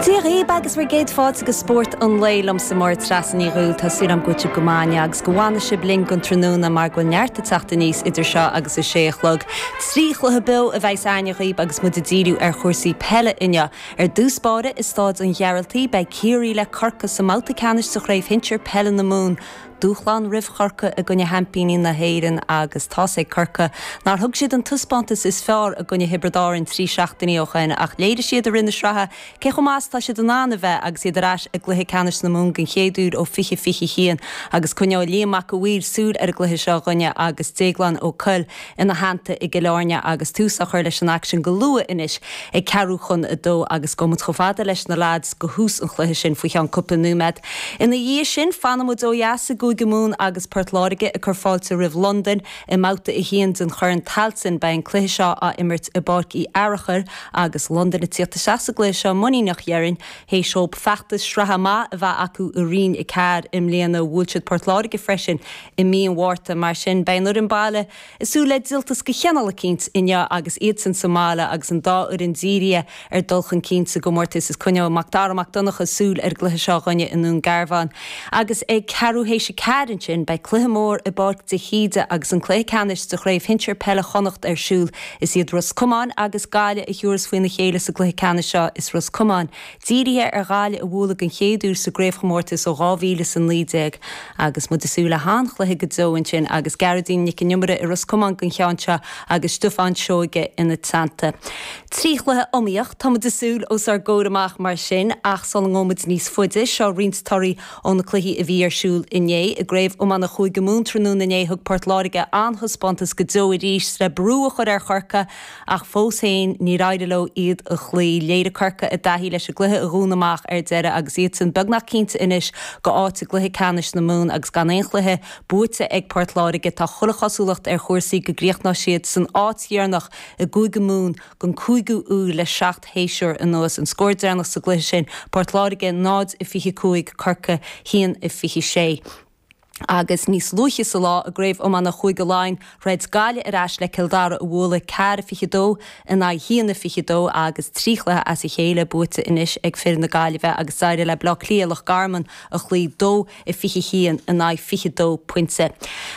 Dia dhaoib agus bhur gcéad fáilte go Spórt an Lae liomsa Máire Treasa Ní Dhubhghaill. Tá súil agam go bhfuil sibh go maith inniu agus go bhfana sibh linn don tráthnóna mar go bhfuil neart ag teacht aníos idir seo agus a sé a chlog. Trí chluiche beo a bheas againne dhaoib agus muid ag díriú ar chúrsaí peile inniu. Ar dtús báire i Staid an Ghearaltaigh beidh Ciarraí le Corcaigh sa mbabhta ceannais de Chraobh Shinsir Peile na Mumhan. Dúshlán roimh Chorcaigh i gcoinne sheaimpíní na hÉireann agus tá's ag Corcaigh nár thug siad an taispeántas is fearr i gcoinne Thiobraid Árainn trí seachtainí ó shin ach léirigh siad i rith na sraithe cé chomh maith is atá siad in ann a bheith agus iad ar ais i gcluiche ceannais na Mumhan den chéad uair ó 2021 agus coinneoidh Liam Mac an Mhaoir súil ar an gcluiche seo dhúinne agus Déaglán Ó Cuill. ina theannta i gCill Airne agus tús á chur leis an aicsean go luath anois ag ceathrú chun a 2 agus gabhfaidh muid chomh fada leis na leaids do thús an chluiche sin faoi cheann cúpla nóiméad ina dhiaidh sin. Fanfaidh muid ó dheas i gCúige Mumhan agus Port Láirge ag cur fáilte roimh Londain i mBabhta 1 den Chorn Tailteann. Beidh an cluiche seo á imirt i bPáirc Uí Fhearachair agus Londain ag tíocht isteach sa gcluiche seo muiníneach dhéarfainn. Théis dóibh feachtas sraithe maith a bheith acu i Roinn 4 i mbliana bhuail siad Port Láirge freisin I mí an Mhárta, mar sin, beidh an fhoireann baile ag súil le díoltas de chineál eicínt inniu agus iadsan sa mbaile agus an dá fhoireann dírithe ar dhul chun cinn sa gcomórtas. Is coinneoidh Macdara Mac Donncha súil ar an gcluiche seo dhúinne i nDún Garbhán agus ag ceathrú théis a ceathair ansin beidh cluiche mór i bPáirc de hÍde agus an cluiche ceannais de Chraobh Shinsir Peile Chonnacht ar siúl. Is iad Ros Comáin agus Gaillimh a thiúrfas faoina chéile sa gcluiche ceannais seo. Is Ros Comáin Dírithe ar Ghaillimh a bhualadh den chéad uair sa gcraobhchomórtas ó 2000 is a 19 agus muid ag súil le han-chluiche go deo ansin agus Gearóidín Nic an Iomaire i Ros Comáin don cheann seo agus Stiofán Seoige ina teannta. Trí chluiche iomaíoch, tá muid ag súil os ár gcomhair amach mar sin ach sula ngabhfaidh muid níos faide, seo roinnt torthaí ó na cluichí a bhí ar siúl inné. I gCraobh Iomána Chúige Mumhan tráthnóna inné, thug Port Láirge an-taispeántas go deo arís le brú a chur ar Chorcaigh ach fós féin níor éirigh leo iad a chloí. Léirigh Corcaigh a dtaithí leis an gcluiche a dhúnadh amach ar deireadh agus iadsan beagnach cinnte anois de áit i gcluiche ceannais na Mumhan agus gan aon chluiche buaite ag Port Láirge, tá chuile chosúlacht ar chúrsaí go gcríochnóidh siad san áit dheireanach i gCúige Mumhan don 5ú huair le seacht shéasúr anuas. An scór deireanach sa gcluiche sin, Port Láirge 0-25 Corcaigh 1-26. agus níos luaithe sa lá, i gCraobh Iomána Chúige Laighean, throid Gaillimh ar ais le Cill Dara a bhualadh ceathair a fiche dó in aghaidh haon a fiche dó agus trí chluiche as a chéile buaite anois ag fir na Gaillimhe agus d'éirigh le Bleá Cliath Loch Garman a chloí dó a fiche haon in aghaidh fiche dó pointe.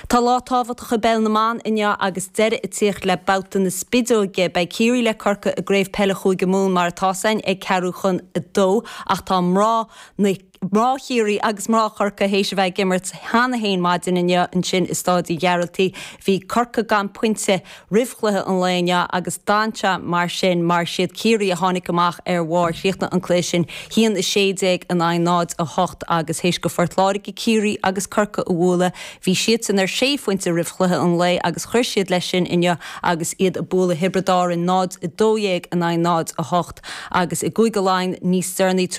Tá lá tábhachtach i bpeil na mban inniu agus deireadh ag tíocht le babhta na spideoige. Beidh Ciarraí le Corcaigh i gCraobh Peile Chúige Mumhan mar atá's againn ag ceathrú chun a dó ach tá mná na. mná Chiarraí agus mná Chorcaí théis a bheith ag imirt cheana fhéin maidin inniu ansin i Stáid Uí Ghearaltaigh. Bhí Corcaigh gan pointe roimh chluiche an lae inniu agus d'fhan sé mar sin mar siad Ciarraí a tháinig amach ar bharr. Chríochnaigh an cluiche sin haon 16 in aghaidh 0, 8 agus théis do Phort Láirge Ciarraí agus Corcaigh a bhualadh bhí siadsan ar sé phointe roimh chluiche an lae agus chuir siad leis sin inniu agus iad ag bualadh Thiobraid Árainn 0, 12 in aghaidh 0, 8 agus i gCúige Laighean níos deireanaí tar